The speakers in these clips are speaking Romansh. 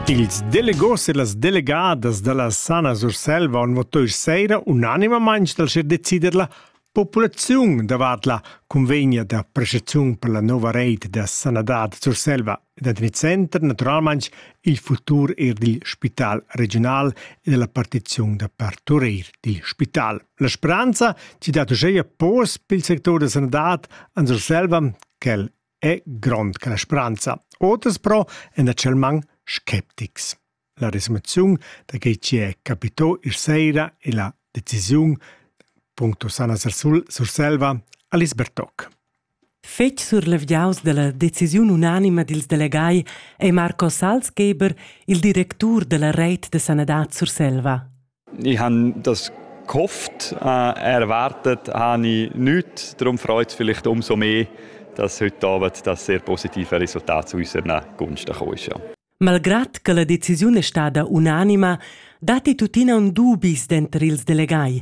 Ils delegos e las delegadas da la Sana Surselva han votà sera unanimamain per decider la populaziun davart la cunvegna da prestaziun per la nova reit da sanadad Surselva ed en il center naturalmain il futur er dil spital regional e della partiziun da parturir dil spital. La speranza ci dat uscheia pos pel sector da sanadad an Surselva quel è grond che la spranza. Oters però èn actualmain sceptics. La resumaziun da quei ci è capitò ir sera e la decisiun punto Sana Surselva Alice Bertoc. Fetg surlevgiaus dalla decisiun unanima dils delegai è Marco Salzgeber, il directur della reit de sanadad Surselva. Ich habe das gehofft, äh, erwartet habe ich nichts. Darum freut es vielleicht umso mehr, dass heute Abend das sehr positive Resultat zu unseren Gunsten gekommen ist. Ja. Malgrad che la decisiun è stata unanima, datti tuttina un dubis denter ils delegai.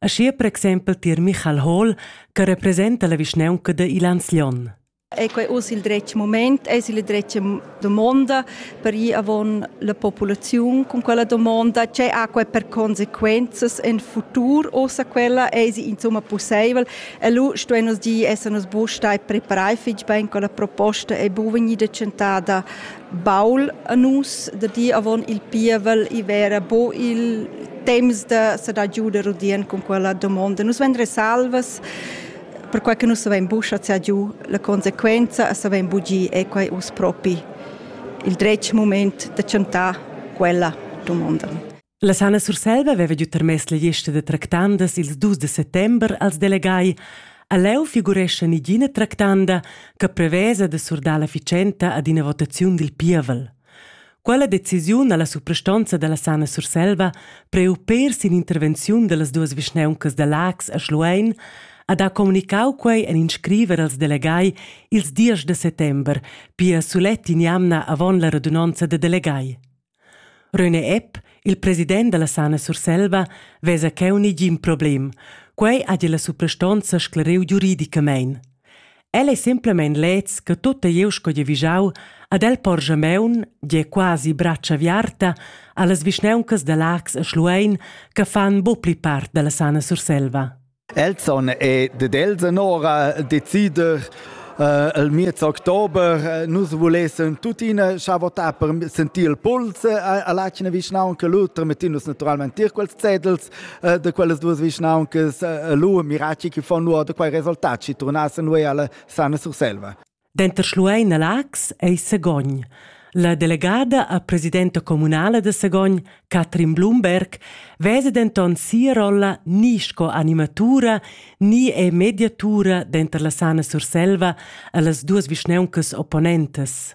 Aschia per exempel tier Michael Hall, che representa la vischnaunca de Ilanz Lion. È quei uss il dretg moment? Eis il dretg domonda per ir avon la populaziun cun quella domonda? Tgei ha quei per consequenzas en futur ussa quella? Eisi insomma pusseivel? E lu stuein nus dir esser nus buc stai preparai fetg bein con la proposta ei buca vegnida tschentada baul a nus da dir avon il pievel i vera bo il temps da sa da giuder udien cun quella domonda. Nus vendre salvas perquai che nus savein buca schar giu la consequenza e savein bugir è quei uss propi il dretg moment da chantar quella dumonda. La Sana Surselva aveva giu termess la gliesta da tractandas ils dus de settember als delegai. A leu figurescha nigina tractanda che prevesa de surdar la ficenta ad ina votaziun dil pievel. Quella decisiun ha la suprastonza dalla Sana Surselva priu pér sin intervenziun dallas duas vischneuncas da Laax a Schluein ha da communicau quei en in scriver als delegai ils diesch da settember, pia sulet in'jamna avon la radunonza da delegai. Röne Epp, il president dalla Sana Surselva, vesa cheu negin problem. Quei ha la suprastonza sclariu giuridicamein. El ei semplamein leds che tutta glieud sco gie vigiau ad el porscha meun, gie quasi bratscha viarta, allas vischnauncas da Lax e Schluein che fan buc pli part dalla sana Surselva. Elson è de Delsen ora decider Uh, il miez october uh, nus volessen tuttina scha votar per sentir il puls uh, all'acina vischnaunca Luther mettinus naturalmente tier quels zetels eh, da quellas duas vischnauncas eh, lu mirati che fanno da quei resultat ci tornassen noi alla sana Surselva. Denter Schluein e Lax ei Segogn. La delegada a presidenta comunala de Segogn, Katrin Blumberg, vese denton sia rolla ni sco animatura ni è mediatura denter la Sana Surselva e las duas vischnauncas opponentes.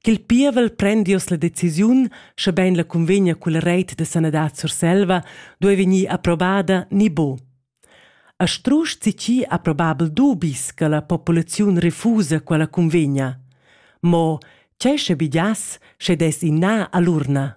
ch'il pievel prendius la decisiun, schebein la cunvegna cul reit de sanadad Surselva duei vegnir approbada ni bo. A strusch zichi approbabel dubis che la populaziun refusa quella cunvegna. Mo tgei sche bidias, sche des in na all'urna.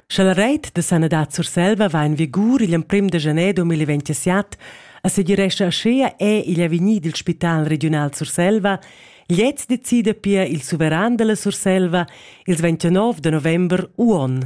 Sche la reit da sanadad Surselva va en vigur igl emprem de gener 2027, assegirescha aschia è igl avegnir dil spital regiunal Surselva, gliez decida pia il suveran dalla Surselva ils 29 de november uon.